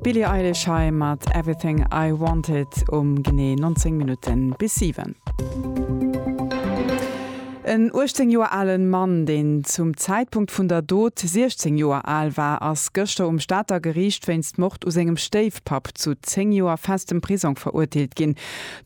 D'Billie Eilish hei mat Everything I Wanted um genee 19 Minutten bis 7. En 18 Joer alen Mann, deen zum Zäitpunkt vun der Dot 16 Joer al war, ass gëschter um Stater Geriicht wéinst Mord u sengem Stéifpapp zu 10 Joer festem Prisong verurteelt ginn.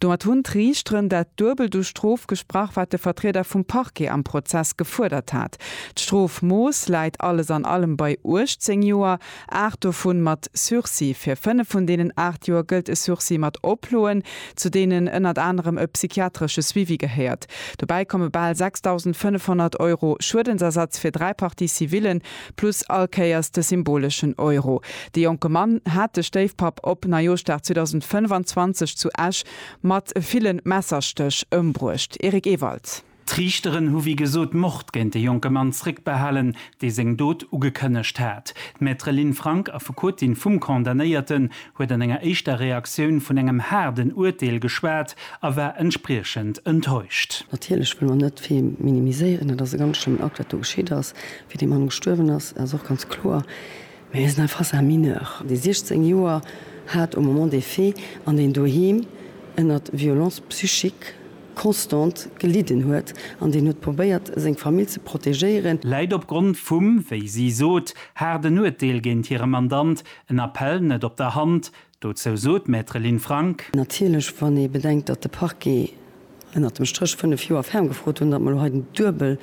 Domat hunn d'Riichteren dat Duebelt u Strof gesprach, wat de Vertrieder vum Parquet am Prozess gefuerdert hat. D'Strofmooss läit alles an allem bei 18 Joer, aacht dovun mat Sursis. Fir fënnef vun deenen aacht Joer gëllt e Sursis mat Oploen, zu deenen ënnert anerem e psychiatresche Suivi gehéiert. Dobäi komme bal 6.500 Euro Schuedensersatz fir dräi Parties civillen, plus all Kéiers de symboleschen Euro. De jonke Mann hat de Stéifpapp op Neijooschdag 2025 zu Esch mat ville Messerstéch ëmbruecht. Eric Ewald. D'Riichteren hu wéi gesot Mord géint de jonke Mann zréckbehalen, dee seng Dot ugekënnegt hat. D'Maître Lynn Frank, Affekotin vum Condamnéierten, huet an enger éischter Reaktioun vun engem haarden Urteel geschwat a war entspriechend enttäuscht. Natierlech wëlle mer net vill minimiséieren. Et ass e ganz schlëmmen Akt, wat do geschitt ass. Wéi dee Mann gestuerwen ass, ass och ganz kloer. Mä hie ass nach face à un mineur, dee 16 Joer hat au moment des faits an deen doheem ënnert violence psychique, Constante gelidden huet an deen huet probéiert, seng Famill ze protegéieren. Läit opgrond vum, wéi si sot, haarden Urteel géint hire Mandant en Appell net op der Hand. Dozou sot d'Maître Lynn Frank. Natierlech, wann ee bedenkt, datt de Parquet ënnert dem Stréch fënnef Joer ferm gefrot hunn, datt mer elo hei den duebel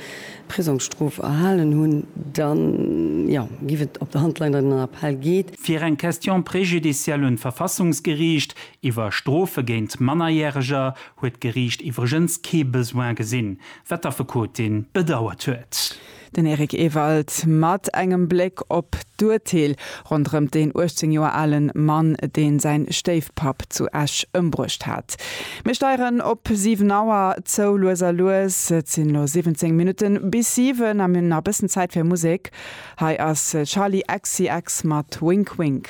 Prisongsstrof erhalen hunn, da jo, géif et op der Hand leien, datt een en Appell geet. Fir eng Question préjudicielle un d'Verfassungsgeriicht iwwer Strofe géint Mannerjäreger huet d'Geriicht iwwregens kee Besoin gesinn, wat d'Affekotin bedauert huet. Den Eric Ewald mat engem Bléck op d'Urteel ronderëm deen 18 Joer ale Mann, dee säin Stéifpapp zu Esch ëmbruecht hat. Mir steieren op 7 Auer zou, lues a lues. Et sinn elo 17 Minutte bis 7 a mir hunn nach e bëssen Zäit fir Musek. Hei ass Charli XCX mat Wink Wink.